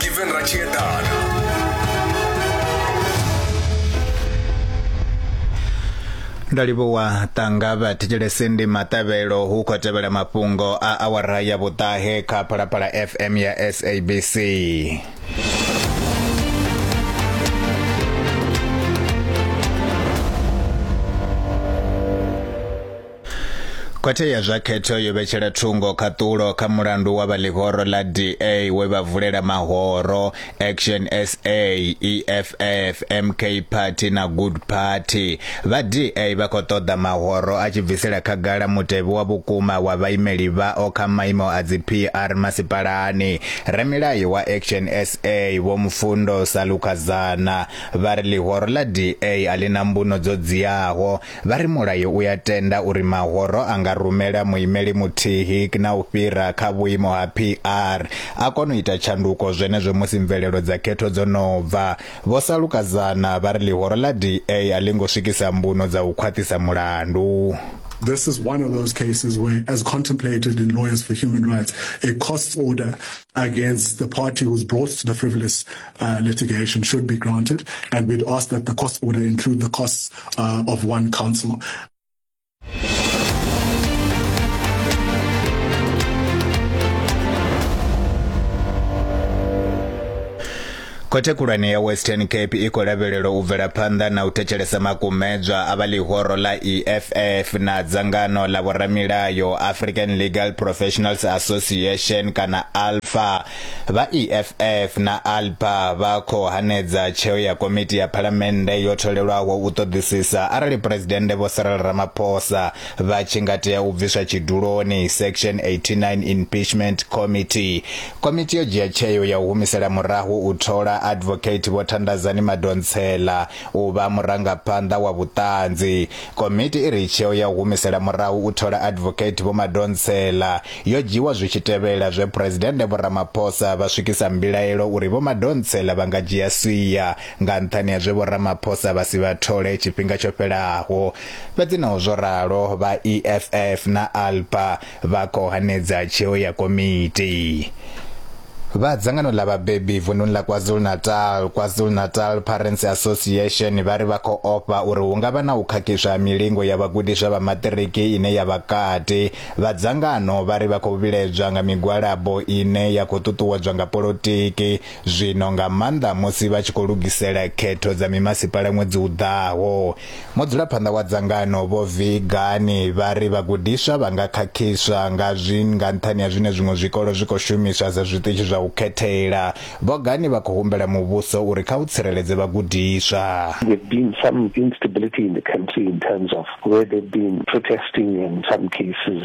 Given Rachiedana. ndo livhuwa tanga vha thetshelese ndi maṱavhelo hu khou tevhela mafhungo a awara ya vhuṱahe kha phalaphala fm ya sabc Khothe ya zwa khetho yo vhetshela thungo khaṱulo kha mulandu wa vha ḽihoro ḽa DA we vha vulela mahoro Action SA, EFF, MK Party na Good Party. Vha DA vha khou ṱoḓa mahoro a tshi bvisela khagala mutevhe wa vhukuma wa vhaimeli vhao kha maimo a dzi PR masipalani. Ramilayo wa Action SA Vho Mufundo Salukazana vha ri ḽihoro ḽa DA a ḽi na mbuno dzo dziaho Vha ri mulayo u a tenda uri mahoro a nga rumela muimeli muthihi na u fhira kha vhuimo ha PR a kona u ita tshanduko zwenezwo musi mvelelo dza khetho dzo no bva. Vho Salukazana vha ri ḽihoro ḽa DA a ḽi ngo swikisa mbuno dza u khwaṱhisa mulandu. This is one of those cases where, as contemplated in Lawyers for Human Rights, a costs order against the party who's brought the frivolous litigation should be granted, and we'd ask that the cost order include the costs of one counsel. khothe khulwane ya western cape i khou lavhelelwa u bvela phanḓa na u thetshelesa makumedzwa a vha ḽihoro ḽa eff na dzangano ḽa vhoramilayo african legal professionals association kana alpha Vha EFF na ALPA vha khou hanedza tsheo ya komiti ya phalamennde yo tholelwaho u ṱoḓisisa arali Phresidennde Vho Cyril Ramaphosa vha tshi nga tea u bviswa tshiduloni, Section 89 Impeachment Committee. Komiti yo dzhia tsheo ya u humisela murahu u thola Advocate Vho Thandazani Madonsela U vha murangaphanḓa wa vhuṱanzi. Komiti i ri tsheo ya u humisela murahu u thola Advocate Vho Madonsela yo dzhiwa zwi tshi tevhela zwe Phresidennde Vho Ramaphosa vha swikisa mbilaelo uri Vho Madonsela vha nga dzhia sia nga nṱhani ha zwe Vho Ramaphosa vha si vha thole tshifhinga tsho fhelaho. Fhedzi naho zwo ralo, vha EFF na ALPA Vha khou hanedza tsheo ya komiti vha dzangano ḽa vhabebi vunḓuni ḽa KwaZulu-Natal, KwaZulu-Natal Parents Association vha ri vha khou ofha uri hu nga vha na u khakhiswa ha milingo ya vhagudiswa vha maṱiriki ine ya vha kati. Vha dzangano vha ri vha khou vhiledzwa nga migwalabo ine ya khou ṱuṱuwedzwa nga polotiki zwino nga maanḓa musi vha tshi khou lugisela khetho dza mimasipala ṅwedzi u ḓaho. Mudzulaphanḓa wa dzangano Vho Vigani vha ri vhagudiswa vha nga khakhiswa nga zwi nga nṱhani ha zwine zwiṅwe zwikolo zwi khou shumiswa sa zwiṱitshi zwa u khethela. Vho Gani vha khou humbela muvhuso uri kha u tsireledze vhagudiswa. There've been some instability in the country in terms of where they've been protesting in some cases.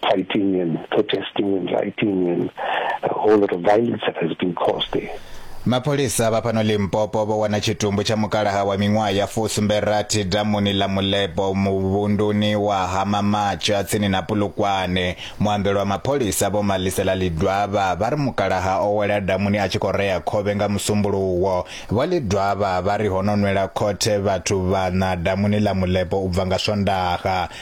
fighting and protesting and rioting and a whole lot of violence that has been caused there. Mapholisa vha fhano Limpopo vho wana tshitumbu tsha mukalaha wa miṅwaha ya fusumbe rathi damuni ḽa Mulebo muvhunduni wa Hamamatsha tsini na Pulukwane. Muambeli wa mapholisa Vho Malisela Lidwaba vha ri mukalaha o wela damuni a tshi khou rea khovhe nga musumbuluwo. Vho Lidwaba vha ri ho no nwela khothe vhathu vhaṋa damuni ḽa Mulebo u bva nga Swondaha.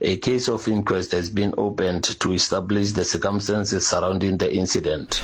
A case of inquest has been opened to establish the circumstances surrounding the incident.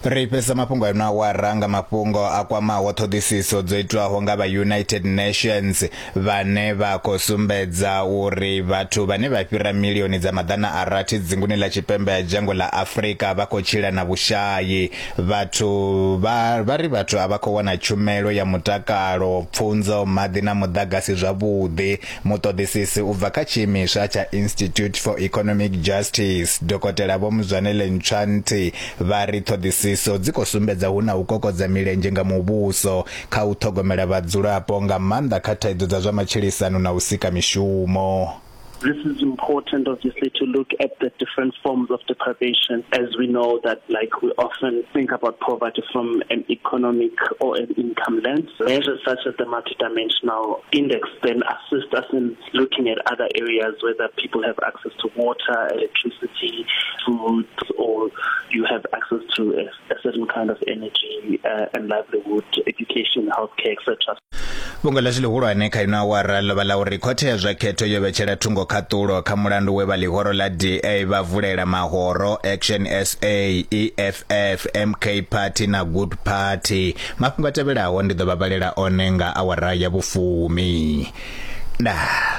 ri fhedzisa mafhungo ano awara nga mafhungo a kwamaho ṱhoḓisiso dzo itwaho nga vha united nations vhane vha khou sumbedza uri vhathu vhane vha fhira milioni dza maḓana a rathi dzinguni ḽa tshipembe ya dzhango ḽa afurika vha khou tshila na vhushayi vhathu vha vha ri vhathu a vha khou wana tshumelo ya mutakalo pfunzo maḓi na muḓagasi zwavhuḓi Muṱoḓisisi u bva kha tshiimiswa tsha Institute for Economic Justice, Dokotela Vho Mzwanele Ntshwantsi, vha ri ṱhoḓisiso dzi khou sumbedza hu na u kokodza milenzhe nga muvhuso kha u ṱhogomela vhadzulapo nga maanḓa kha thaidzo dza zwa matshilisano na u sika mishumo. This is important, obviously, to look at the different forms of deprivation, as we know that, like, we often think about poverty from an economic or an income lens. Measures such as the dimensional index then assist us in looking at other areas whether people have access to water, electricity, food, or you have access to a, a certain kind of energy uh, and livelihood, education, healthcare, etc. vhungo ḽashu ḽihulwane kha ino awara ḽo vha ḽa uri khothe ya zwa khetho yo vhetshela thungo khaṱulo kha mulandu we vha ḽihoro ḽa da vha vulela mahoro action sa eff mk party na good party Mafhungo a tevhelaho ndi ḓo vha vhalela one nga awara ya vhufumi. Ndaa.